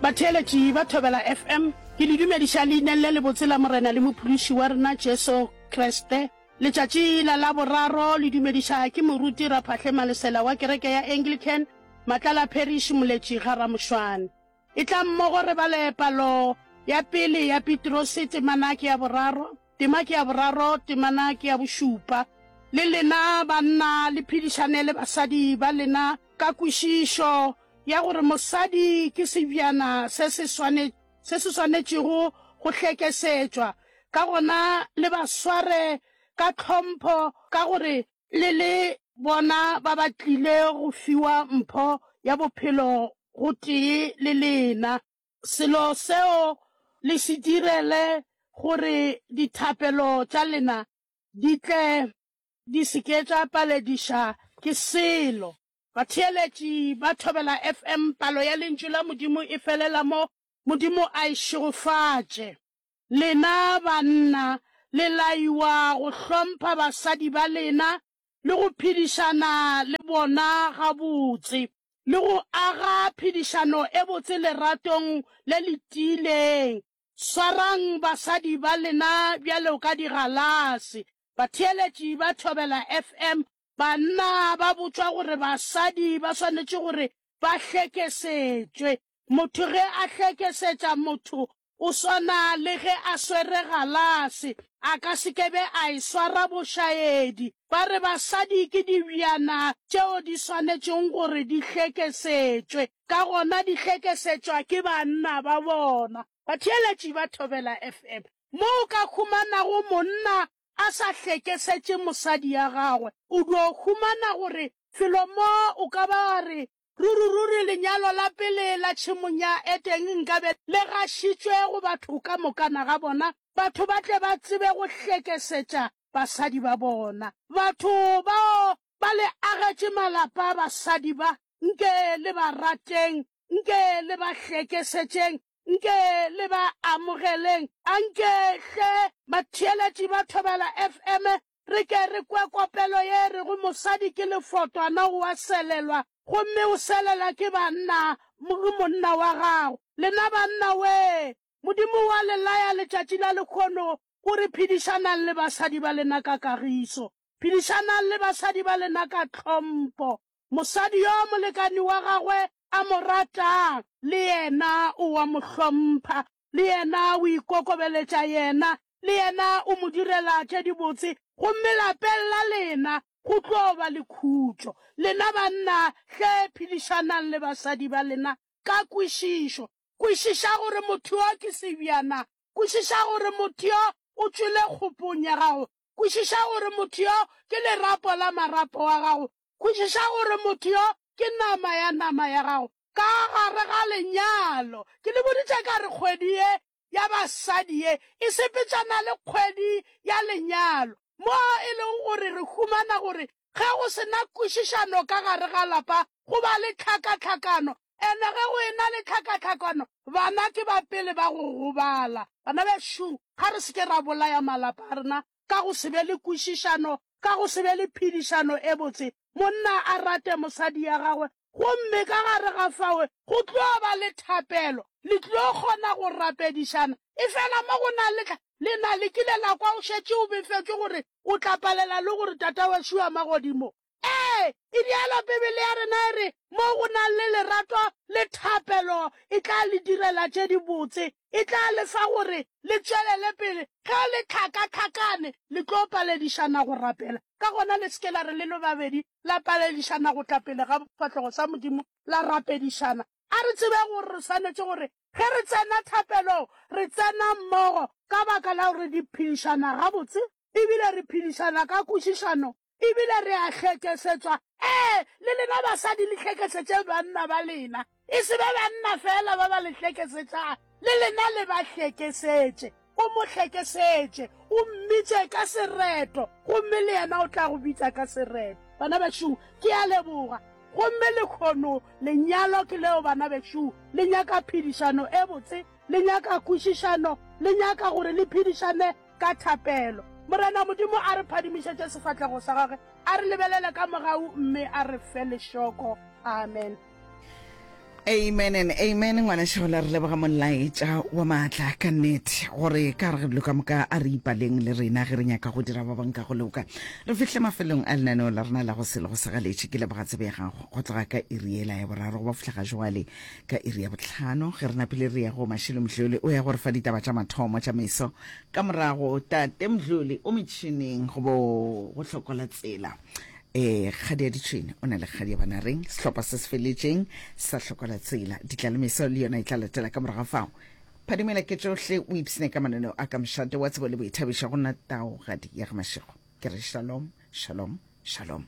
Batheeletši ba Thobela FM, ke le dumediša leineng le lebotse la Morena le Mophološi wa rena Jesu Kriste. Letšatši la Laboraro le dumediša ke moruti Raphahle Malesela wa kereke ya Anglican, Matlala Parish, Moletši ga Ramošwane. Etlang mmogo re bale palo ya pele ya Pitrose temana ke ya boraro. Tema ke ya boraro, temana ke ya bošupa. Le lena banna le phedišane le basadi ba lena ka kwešišo ya gore mosadi ke sebjana se se swane, se se swanetšego go hlekesetšwa. Ka gona le ba sware ka tlhompho ka gore le le bona ba ba tlile go fiwa mpho ya bophelo gotee le lena. Selo seo le se direle gore dithapelo tša lena di tle di se ke tša palediša ke selo. Batheeletši ba Thobela FM Palo ya Lentšu la Modimo e felela mo, Modimo a e šegofatše. Lena banna le laiwa go hlompha basadi ba lena le go phedišana le bona gabotse le go aga phedišano e botse leratong le le tiileng. Swarang basadi ba lena bjalo ka digalase. Batheeletši ba Thobela FM, Banna ba botšwa gore basadi ba swanetše gore ba hlekesetšwe. Motho ge a hlekesetša motho O swana le ge a swere galase, a ka se ke be a e swara bošaedi. Ba re basadi ke dibjana tšeo di swanetšego gore di hlekesetšwe, ka gona di hlekesetšwa ke banna ba bona. Batheeletši ba Thobela FM, Mo o ka humanago monna a sa hlekesetše mosadi ya gagwe, o dio humana gore felo mo o ka ba wa re Ruri-ruri lenyalo la pele la tšhemong ya Eteng nkabe le gašitšwe go batho ka mokana ga bona, batho ba tle ba tsebe go hlekesetša basadi ba bona. Batho bao ba le agetše malapa, basadi ba, nke le ba rateng, nke le ba hlekesetšeng, nke le ba amogeleng. Anke hle batheeletši ba Thobela FM Re ke re kwe kopelo ye e rego, Mosadi ke lefotwana, o a selelwa, gomme o selela ke banna, le monna wa gago. Lena banna, wee! Modimo wa le laya letšatši la lekhono, o re, Phedišanang le basadi ba lena ka kagiso. Phedišanang le basadi ba lena ka tlhompho. Mosadi yo molekani wa gagwe a mo ratang, le yena o a mo hlompha. le yena o ikokobeletša yena, le yena o mo direla tše dibotse, gomme lapeng la lena go tlo ba le khutšo. Lena banna hle phedišanang le basadi ba lena ka kwešišo. Kwešiša gore motho yo ke sebjana. Kwešiša gore motho yo o tšwele kgopong ya gago. Kwešiša gore motho yo ke lerapo la marapo a gago. Kwešiša gore motho yo ke nama ya nama ya gago. ka gare ga lenyalo. Ke le boditše ka re kgwedi ye ya basadi ye e sepetšana le kgwedi ya lenyalo, mo e lego gore re humana gore ge go se na kwešišano ka gare ga lapa go ba le tlhakatlhakano, ene ge go ena le tlhakatlhakano bana ke ba pele ba go gobala. Bana bešung, ga re se ke ra bolaya malapa a rena ka go se be le kwešišano, ka go se be le phedišano e botse, monna a rate mosadi ya gagwe, gomme ka gare ga fao go tlo ba le thapelo, le tlo kgona go rapedišana. Efela mo go na le, lena le kile la kwa o šetše o befetšwe gore o tla palela le gore Tata wa Šuamagodimo Ee, e bjalo, Bibele ya rena e re, Moo go nago le lerato le thapelo, e tla le direla tše dibotse. E tla le fa gore le tšwelele pele. Ge le hlakahlakane, le tlo paledišana go rapela. Ka gona le se ke la re le le babedi la paledišana go tla pele ga sefahlogo sa Modimo la rapedišana. A re tsebeng gore re swanetše gore ge re tsena thapelong, re tsena mmogo ka baka la gore re phedišana gabotse e bile re phedišana ka kwešišano Ebile re a hlekesetswa, ee, le lena basadi le hlekesetse banna ba lena, e se ba banna feela ba ba le hlekesetšang, le lena le ba hlekesetše. O mo hlekesetše, o mmitše ka sereto, gomme le yena o tla go bitša ka sereto. Bana bešung, ke a leboga. Gomme lekgono, lenyalo ke leo, bana bešung. Le nyaka phedišano e botse, le nyaka kwešišano, le nyaka gore le phedišane ka thapelo. Morena Modimo a re phadimišetše sefatlego sa gagwe, a re lebelele ka mogau mme a re fe lešoko. Amen. Amen and amen ngwanešola re leboga molaetša wa maatla ka nnete gore ka re dilo ka moka a re ipaleng le rena ge re nyaka go dira ba bang ka go loka re fihle mafelong a lenaneo la rena la go se le go segaletše ke leboga tsebe ya gago go tloga ka iriela ya boraro go ba fihla ga joale Ka iri ya bohlano, ge re napile re ya go Mashilo Mdluli, o ya go re fa ditaba tša mathomo tša meso. Ka morago, Tate Mdluli o metšhineng go bo go hlokola tsela. Ee, Kgadi ya Ditšhwene o na le Kgadi ya Banareng, sehlopha se se feletšeng sa hlokola tsela. Ditla le meso le yona e tla latela ka morago ga fao. Phadimela ke tšohle o ipshine ka mananeo a ka mošate wa tsebo le boithabišo go nna taogadi ya ga Mashego. Ke re shalom, shalom, shalom.